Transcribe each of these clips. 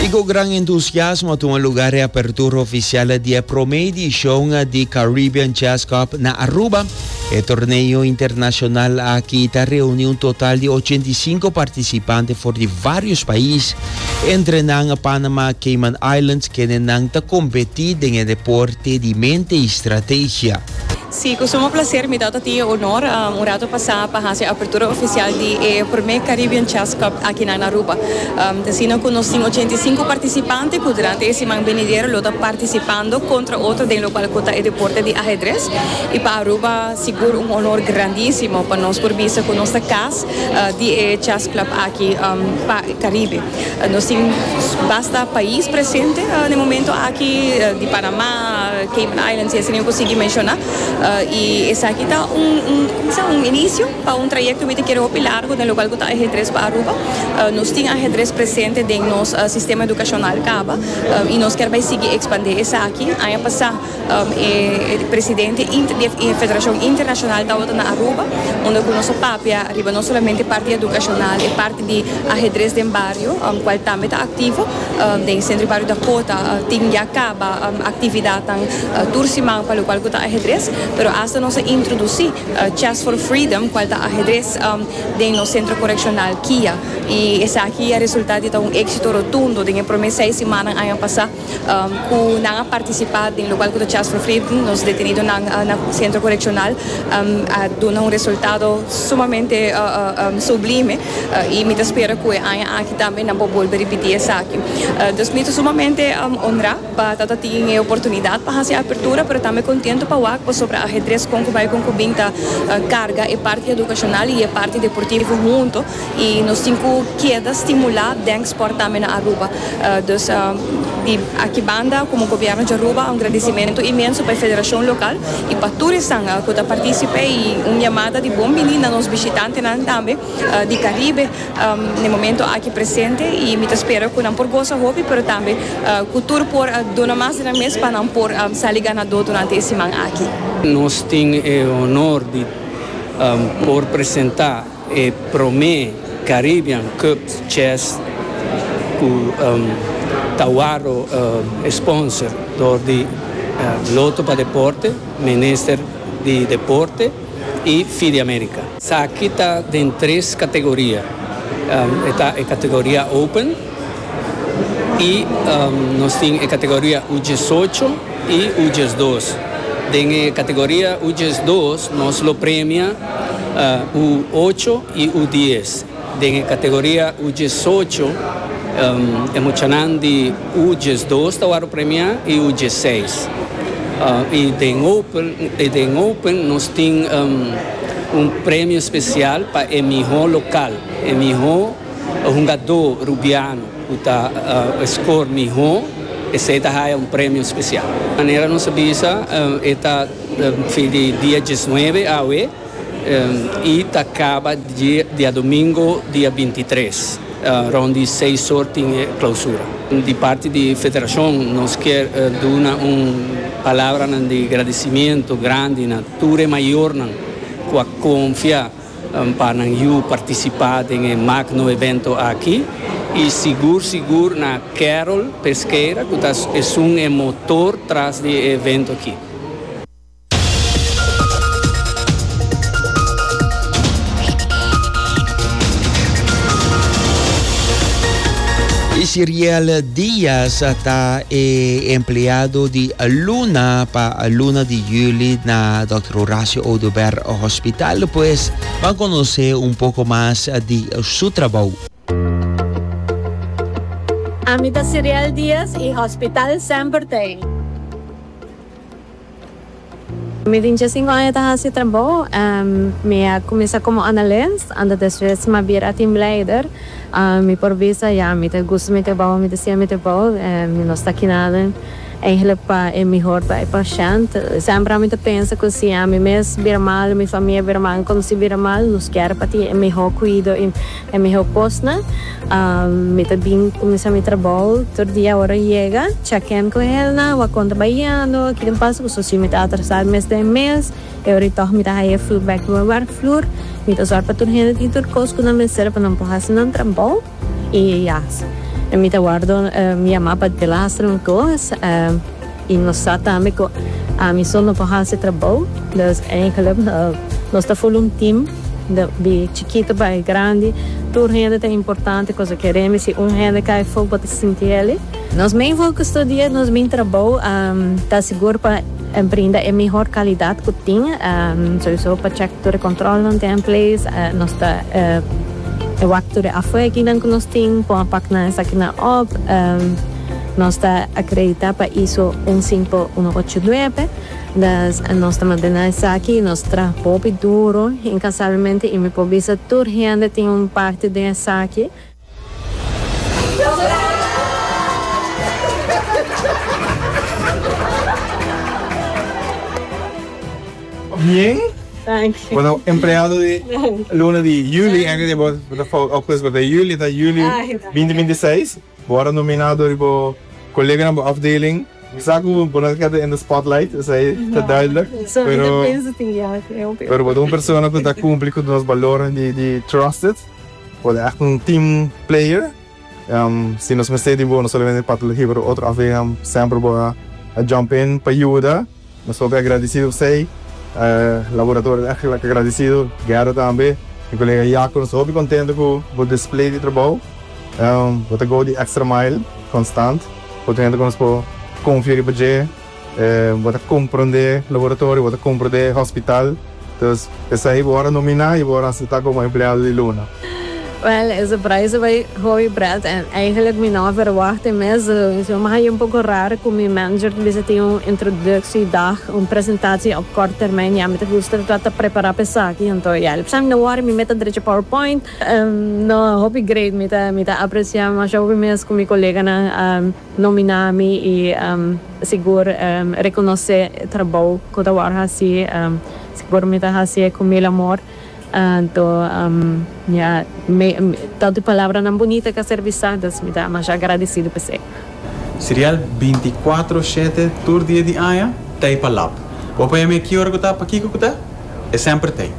Y cu gran entusiasmo tuma lugar e apertura oficial di e prome edicion di Caribbean Jazz Cup na Aruba. E torneo internacional aki ta reuni un total di ochenta y cinco participante for di varios pais, entre nan Panama, Cayman Islands, kenenan ta competi den e deporte di mente y strategia. Si, cu suma placer mi ta ta tin e honor un rato pasa pa haci e apertura oficial di e primer Caribbean Chess Cup aki na Aruba. Ta asina cu nos tin ochenta i sinku participante cu durante e siman benidero lo ta participando contra otro den locual cu ta e deporte di Ahedres. Y pa Aruba sigur un honor grandisimo pa nos por bisa cu nos ta cas di e Chess Club aki pa Caribe. Nos tin basta pais presente na e momento aki, di Panama, Cayman Islands, y asina yo cu sigui menciona. Y esaki ta un, un, como se dice, un inicio pa un trayecto mi ta kere hopi largo den locual cu ta ajedrez pa Aruba. Nos tin ajedrez presente den nos sistema educacional caba y nos ker bay sigui expande esaki. Aña pasa. E presidente di e federashon internashonal tabata na Aruba unda ku nos a papia riba no solamente parti edukashonal e parti di ahedres den bario kual tambe ta aktivo den sentro di bario Dakota tin ya kaba aktividatnan tur siman pa lokual ku ta ahedres pero asta nos a introdusí Chess for Freedom kual ta ahedres den nos sentro korekshonal kia i esaki a resulta di ta un éksito rotundo den e promé seis simannan aña pasá. cu nan a participa den lugar cu ta tjia sufri, nos detenidonan na centro coreccional a duna un resultado sumamente sublime y mi ta spera cu e aña aki tambe nan por bolbe ripiti esaki. Dus mi ta sumamente honra pa ta ta tin e oportunidad pa haci e apertura pero tambe contento pa wak pasobra e ajedrez con cu bay con cu bin ta carga e parti educacional y e parti deportivo hunto. y nos tin cu keda stimula den sport tambe na Aruba. Dus di aki banda como Gobierno dje Aruba un gradicimento inmenso pa e federacion local y pa tur esnan cu ta participe y un yamada di bon bini na nos bishitantenan tambe di Caribe n'e momento aki presente y mi ta spera cu nan por goza hopi pero tambe cu tur por duna mas di nan mes pa nan por sali ganador durante e siman aki. Nos tin e honor di por presenta. E promé Caribbean Cup Chess ku ta wòrdu sponsor dor di Loto pa Deporte, Minister di Deporte i Fide America. Esaki ta den tres kategoria. E ta e kategoria Open. y nos tin e categoria U diesocho y U diesdos. Den e categoria U diesdos nos lo premia U ocho y U dies. Den e categoria U diesocho e muchanan di U diesdos ta wòrdu premiá y U diesseis. Y den Open y den Open nos tin un premio special pa e mihó local, e mihó. E hungadó Rubiano ku ta skor mihó esei ta haya un premio spesial. Manera nos a bisa e ta fin di dia dies nuebe awe i ta kaba diadomingo dia binti tres. Rond di seis or tin e klausura. Di parti di federashon nos kier duna un palabranan di gradisimentu grandi na tur e mayornan ku a konfia. Pa nan yu participa den e magno evento aki y sigur sigur na Carol Pesqueira cu ta esun e motor tras di e evento aki. Isiriel Diaz ta e empleado di Luna pa Luna di Juli na Dòkter Horacio Oduber. Hospital despues ban conoce un poco mas di su trabou. Ami ta Siriel Diaz y Hospital semper ta ei. Mi tin diesinco aña ta haci e trabou. Mi a cuminsa como analist, anto despues mi a bira team leider. Mi por bisa, ya, mi ta gusta mi trabou, mi ta siente mi trabou. Mi no sta aki nada. Egle pa e mihor ta e pashènt. Semper ami ta pensa ku si ami mes bira mal i mi famia bira mal, mi kòmensá bira mal, nos kier pa tin e mihó kuido i e mihó kosnan. Mi ta bin kuminsá mi trabou tur dia ora yega, chèkèn ku elnan, wak kon ta bahiendo, ki tin pasa, kusa si mi ta atrasá el mes den mes. E ora ei tòg mi ta haña e feedback di mi wèrkvloer. Mi ta sòru pa tur hende tin tur kos ku nan mester pa nan por hasi nan trabou. I ya, mi ta wòrdu yamá pa delastro un kos, i nos sa tambe ku ami so no por hasi trabou. Dus èinkelijk nos ta ful un tim, di chikitu bai grandi, tur hende ta importante, kosa ke rimi si un hende kai afó bo ta sinti elei. Nos main fokus tur dia, nos main trabou ta sigur pa brinda e mihor kalidat ku tin, souso pa chèk tur e kòntròlnan ta en place, nos ta. E wak tur e afueginan ku nos tin pon a pak nan esakinan òp. Nos ta akreditá pa iso un sinko uno ocho nuebe. Dus nos ta mantená esaki i nos traha hopi duru inkansablemente i mi por bisa tur hende tin un parti den esaki. Bien. Thanks. Bueno, empleado di luna di juli, antes di bo ta fout august, bo ta juli, ta juli binti binti seis. Bo a nominado riba bo koleganan, bo afdeling. Sa ku bo no ta keda in de spotlight, esei ta duidelijk, pero, pero bo ta un persona ku ta kumpli ku nos balornan di trusted. Bo ta ègt un team player. Si nos mester di bo, no solamente pa ta lihí, pero otro afehan semper bo a jump in pa yuda. Nos papia agradisido pa esei. Laboratorio ta extra agradisido, Guerra tambe, mi colega Yaco. Nos ta hopi contento cu bo display di trabou. Bo ta go di extra mile constant, por ta hende cu nos por confia riba dje. Bo ta comprende laboratorio, bo ta comprende hospital, dus esei bo ora nomina y bo ora acepta como empleado di Luna. Well, e surprise bay hoy, Brad, en eigenlijk mi no a verwacht e mes. Yo mi haya un poco rar cu mi manager ta bisa tin un introductie dag, un presentatie op kort termijn y a mi ta gusta ta trata prepara pa esaki. Anto ya, el bisa mi no wori, mi meta drecha powerpoint. No, hopi great, mi ta aprecia masha hopi mes cu mi coleganan. Nomina mi y sigur reconoce e trabou cu ta worde haci. Sigur mi ta hacie cu mil amor. Anto ya tanto e palabranan bunita ca serbi sa, dus mi ta masha agradecido pa esey. Serial binti kuatro shete tur dia di aña ta e pa lap. Bo pa yam'é ki ora ku ta, pa kiko ku ta? E semper t'ei.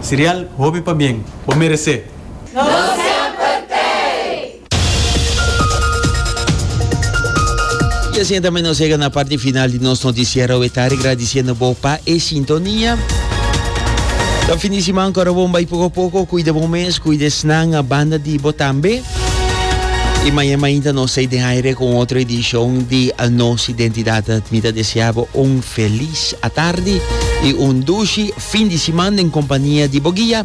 Serial hopi pabien. Bo meres'é! Nos semper t'ei! Y asina tambe nos yega na parti final di nos noticiero awe tarde, agradiciendo bo pa e sintonia. Buen fin di semana, cora bon bay poco a poco, cuida bo mes, cuida esnan, a banda di bo tambe. Y mañana mainta nos say de aire con otro edición di Nos Identidad. Mita deseaba un feliz atardi y un dushi fin di semana en compañía di bo guia.